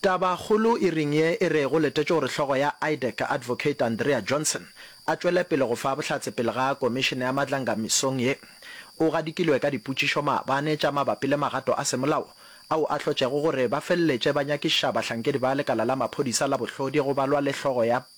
Tabakgolo e reng ye e rego letetše gore hlogo ya IDEC, Advocate Andrea Johnson, a tšwele pele go fa bohlatse pele ga Komišene ya Madlanga mesong ye? O gadikilwe ka dipotšišo maabane tša mabapi le magato a semolao ao a hlotšego gore ba feleletše ba nyakiša bahlankedi ba lekala la maphodisa la bohlodi go balwa le hlogo ya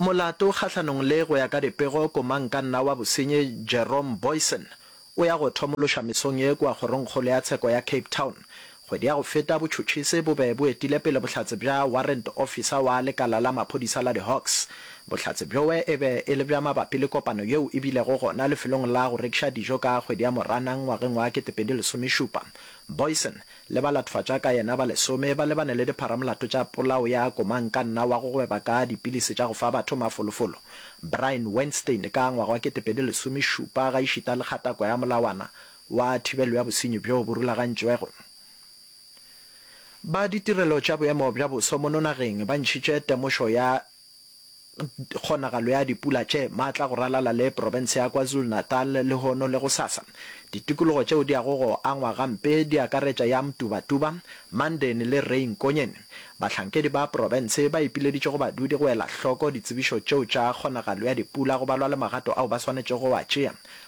Molato kgahlanong le go ya ka dipego Komankanna wa Bosenyi Jerome Booysen o ya go thomološa mesong ye kua Kgorongkgolo ya Tsheko ya Cape Town. Kgwedi ya go feta botšhotšhisi bo be bo etile pele bohlatse bja Warrant Officer wa lekala la maphodisa la di-Hawks. Bohlatse bjoe e be e le bja mabapi le kopano yeo e bilego gona lefelong la go rekiša dijo ka kgwedi ya Moranang ngwageng wa 2017. Booysen le balatofadtša ka yena ba lesome ba lebane le dipharamolato tša polao ya komankanna wa go gweba ka dipilisi tša go fa batho mafolofolo, Brian Weinstein ka ngwaga wa 2017 gaešita le kgatako ya molawana wa thibelo ya bosenyi bjo bo rulagantšwego. Ba ditirelo tša boemo bja boso mono nageng ba ntšhitše temošo ya Kgonagalo ya dipula tše maatla go ralala le profense ya KwaZulu-Natal lehono le gosasa. Ditikologo tšeo di yago go angwa gampe di akaretša ya Mtubatuba, Mandeni le Rain Konyeni. Bahlankedi ba profense ba ipileditše go badudi go ela hloko ditsebišo tšeo tša kgonagalo ya dipula go balwa le magato ao ba swanetšego go a tšea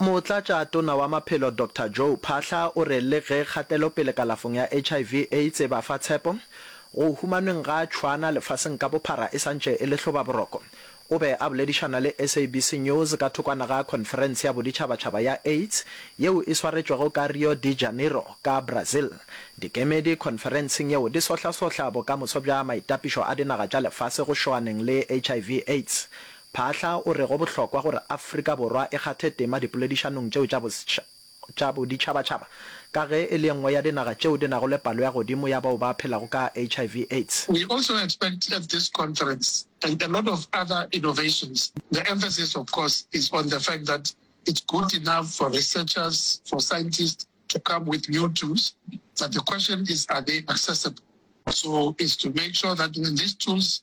Motlatša Tona wa Maphelo Doctor Joe Phaahla o re le ge kgatelopele kalafong ya HIV, AIDS e ba fa tshepo, go humanweng ga tšhwana lefaseng ka bophara e sa ntše e le hlobaboroko. O be a boledišana le SABC News ka thokwana ga khonferense ya boditšhabatšhaba ya AIDS yeo e swaretšwego ka Rio de Janeiro ka Brazil. Dikemedi khonferenseng yeo di sohlasohla bokamoso bja maitapišo a dinaga tša lefase go šoaneng le HIV, AIDS. Phaahla o re go bohlokwa gore Afrika Borwa e kgathe tema dipoledišanong tšeo tša boditšhabatšhaba ka ge e le e nngwe ya dinaga tšeo di nago le palo ya godimo ya bao ba phelago ka HIV, Aids. We also expect at this conference and a lot of other innovations, the emphasis of course is on the fact that it's good enough for researchers, for scientists to come with new tools but the question is are they accessible? So it's to make sure that when these tools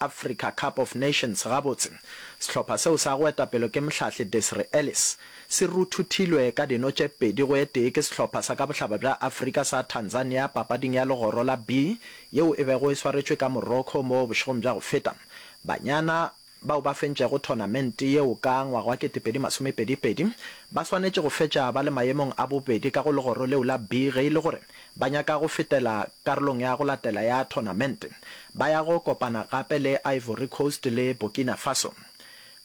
Africa Cup of Nations gabotse, sehlopha seo sa go etapelo ke mohlahli Desiree Ellis, se ruthuthilwe ka dino tše pedi go e tee ke sehlopha sa ka bohlaba bja Afrika sa Tanzania papading ya legoro la B yeo e bego e swaretšwe ka Morocco mo bošegong bja go feta. Banyana bao ba fentšego thonamente yeo ka ngwaga wa kete pedi masome pedi pedi ba swanetše go fetša ba le maemong a bobedi ka go legoro leo la B ge e le gore ba nyaka go fetela karolong ya go latela ya thonamente, ba ya go kopana gape le Ivory Coast le Burkina Faso.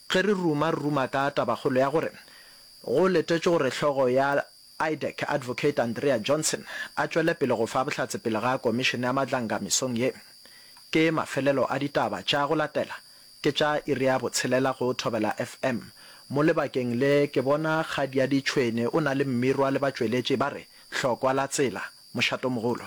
Ge re ruma, re ruma ka tabakgolo ya gore go letetšwe gore hlogo ya IDEC, Advocate Andrea Johnson, a tšwele pele go fa bohlatse pele ga Komišene ya Matlanga mesong ye. Ke mafelelo a ditaba tša go latela Ke tša iri ya botshelela go Thobela FM. Mo lebakeng le ke bona Kgadiadi Tšhwene o na le mmirwa le batšweletši ba re, Hlokwa la tsela, Mošatomogolo.